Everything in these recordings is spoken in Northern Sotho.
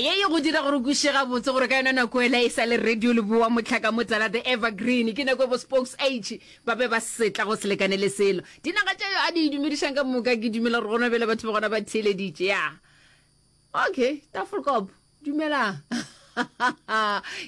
ye ye go dira gore kwiše gabotse gore ka yona nako ela e sa le radio leboa motlhaka motala the evergreen ke nako e bo spokes age ba be ba setla go selekane le selo dinaga tša yo a di dumedišang ka moka ke dumela gore gona bjele batho ba gona ba theeleditše ya okay tafolkop dumelang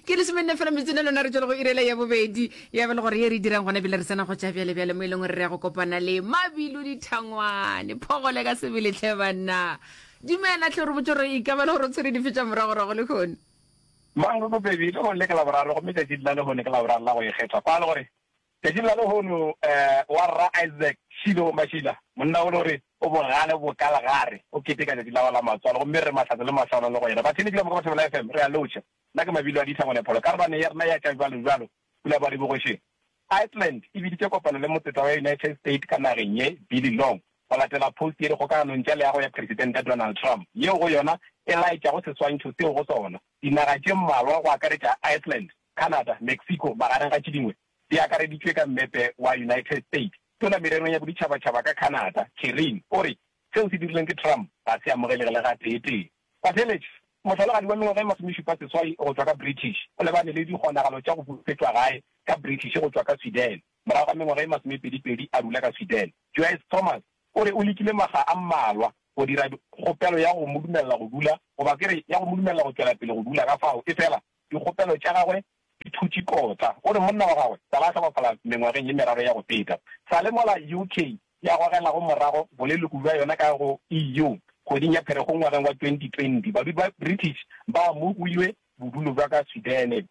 ke le semenne fela metsene lona re tswele go irela ya bobedi ya bele gore ye re dirang gona bjele re tsena go tša bjale bjale mo e leng gore re ya go kopana le mabilu dithangwane phogole ka sebeletlhe banna Dumela, hle o re botše gore e ka ba le gore o tshwere dife tša moragorago lehono. Mang re bobedi, lehono le ke Laboraro gomme tšatšing la lehono ke Laboraro la go Ikgethwa. Kwala gore, Tšatšing la lehono um wa Rra Isaac Shilo wa Mashila, monna o le gore o bogale bo ka legare, o keteka tšatši la gagwe la matswalo gomme re re mahlatse le mahlwana le go yena. Batheletši ka moka ba Thobela FM, re a lotšha. Nna ke Mabilo a Ditlha Ngwanapholo, karolwane ya rena ya tša bjalobjalo. Pula ba re bogošeng. Iceland e biditše kopano le motseta wa United State ka nageng ye, Billy Long, go latela post ye dikgokaganong tša leago ya Presidente Donald Trump, yeo go yona e laetšago seswantšho seo go sona dinaga tše mmalwa go akaretša Iceland, Canada, Mexico magareng ga tše dingwe di akareditšwe ka mmepe wa United State. Tona mererong ya boditšhabatšhaba ka Canada, Kerryn, o re seo se dirilweng ke Trump ga se amogelege le gatee-tee. Pateletše, mohlalogadi wa mengwaga e masomešupa seswai go tšwa ka British, o lebane le dikgonagalo tša go bupetšwa gae ka British go tšwa ka Sweden. Morago ga mengwaga e masomepedipedi a rula ka Sweden, Joyce Thomas o re o lekile makga a mmalwa go dira kgopelo ya go mo dumelela go dula goba ke re ya go mo dumelela go tšwela pele go dula ka fao efela dikgopelo tša gagwe Phuti Kota o re monna wa gagwe sa la hlokofala mengwageng ye meraro ya go feta. Sa le mola UK ya gogelago morago boleloko bja yona ka go EU kgweding ya Pherekgong ngwageng wa 2020, badudi ba British ba amogilwe bodulo bja ka Sudan.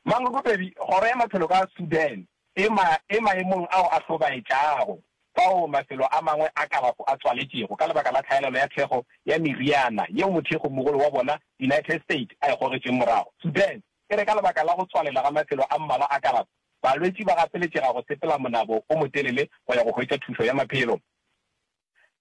Mangokopedi, Kgoro ya Maphelo ka Sudan e ma e maemong ao a hlobaetšago fao mafelo a mangwe a kalafo a tswaletšego ka lebaka la tlhaelelo ya thekgo ya meriana yeo mothekgomogolo wa bona United States a e gogetšeng morago. Sudan. E re ka lebaka la go tswalela ga mafelo a mmalwa a kalafo, balwetši ba gapeletšega go sepela monabo o motelele go ya go hwetša thušo ya maphelo.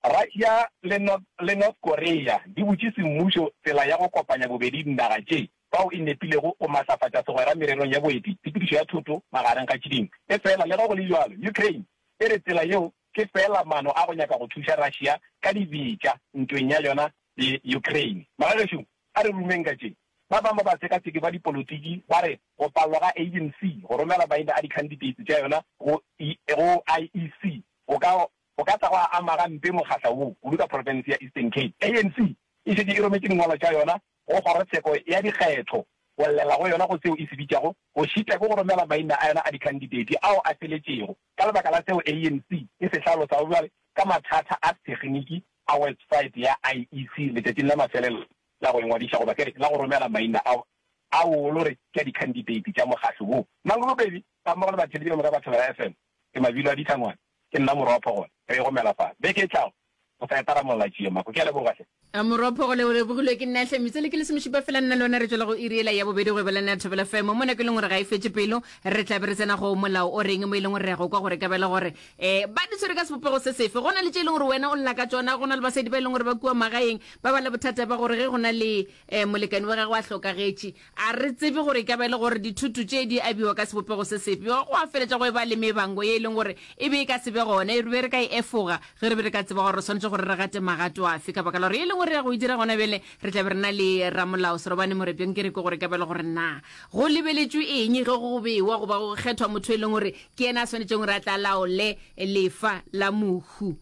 Russia le North Korea di butše semmušo tsela ya go kopanya bobedi dinaga tše fao e nepilego go matlafatša segwera mererong ya boeti, tshepedišo ya thoto magareng ga tše dingwe. Efela le ge go le bjalo, Ukraine e re tsela yeo ke feela maano a go nyaka go thuša Russia ka dibetša ntweng ya yona le Ukraine. Magagešo A re rumeng ka tše. Ba bangwe ba batsekaseki ba dipolotiki ba re go palelwa ga ANC go romela maina a dikhanditeiti tša yona go go IEC go ka go ka tla gwa ama gampe mokgahla wo, kudu ka profense ya Eastern Cape. ANC e šetše e rometše dingwalwa tša yona go kgorotsheko ya dikgetho go llela go yona go seo e se bitšago go šitwa ke go romela maina a yona a dikhanditeiti ao a feletšego ka lebaka la seo ANC e se hlalosago bjale ka mathata a thekniki a website ya IEC letšatšing la mafelelo la go ingwadiša goba ke re la go romela maina ao a wolo re ke a dikhanditeiti tša mokgatlo woo. Mangolobedi gammogo le batheeletši ka moka ba Thobela FM ke mabilo a dihlangwana. Ke nna Moropho gona re igomela fale beke e tlago go sa etara molla Tšiyemako. Ke a leboga hle. Moropho o lebogilwe ke nna hle. Metswale ke lesomešupa fela nna le wena re tšwela go iri yela ya bobedi go ebalana ya Thobela FM mo nako e leng gore ga e fetše pelo re tla be re tsena go Molao o Reng mo e leng gore re ya go kwa gore ka ba e le gore Ee, ba di tshwere ka sebopego se sefe. Go na le tše e leng gore wena o lla ka tšona, go na le basadi ba e leng gore ba kua magaeng, ba ba le bothata ba gore ge go na le um molekane wa gagwe a hlokagetše. A re tsebe gore e ka ba e le gore dithutu tše di abiwa ka sebopego se sefe. Bjao go a feletša go e ba le mebango ye e leng gore e be e ka se be gona, e re be re ka e efoga ge re be re ka tseba gore re swanetše gore re gate magato afe. Ka baka la gore ye e leng gore re ya go e dira gona bjale, re tla be re na le ramolao Serobane Morepe. Nke re kwe gore e ka ba e le gore na go lebeletšwe eng ge go bewa goba go kgethwa motho e leng gore Ke yena a swanetšego gore a tla laole lefa la mohu.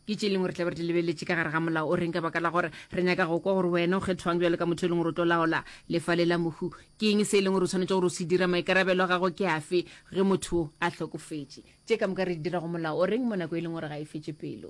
Ke tše leng gore tla be re di lebeletše ka gare ga molao o reng ka baka la gore re nyaka go kwa gore wena o kgethwang bjalo ka motho e leng gore o tlo laola lefa le la mohu. Ke eng se e leng gore o swanetše gore o se dira? Maikarabelo a gago ke afe ge motho a hlokofetše? Tše ka moka re di dira go molao o reng mo nako e leng gore ga e fetše pelo?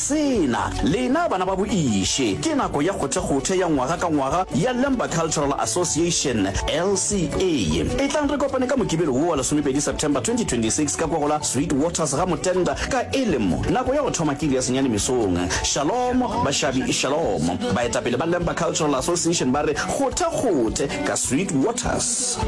Sena, lena bana ba boiše, ke nako ya kgothekgothe ya ngwaga ka ngwaga ya Lemba Cultural Association, LCA. Etlang re kopane ka Mokibelo wo wa lesomepedi September 2026 ka kwa go la Sweet Waters ga Motenda ka elemo nako ya go thoma ke iri ya senyane mesong. Shalom, bašabi, shalom. Baetapele ba Lemba Cultural Association ba re kgothekgothe ka Sweet Waters.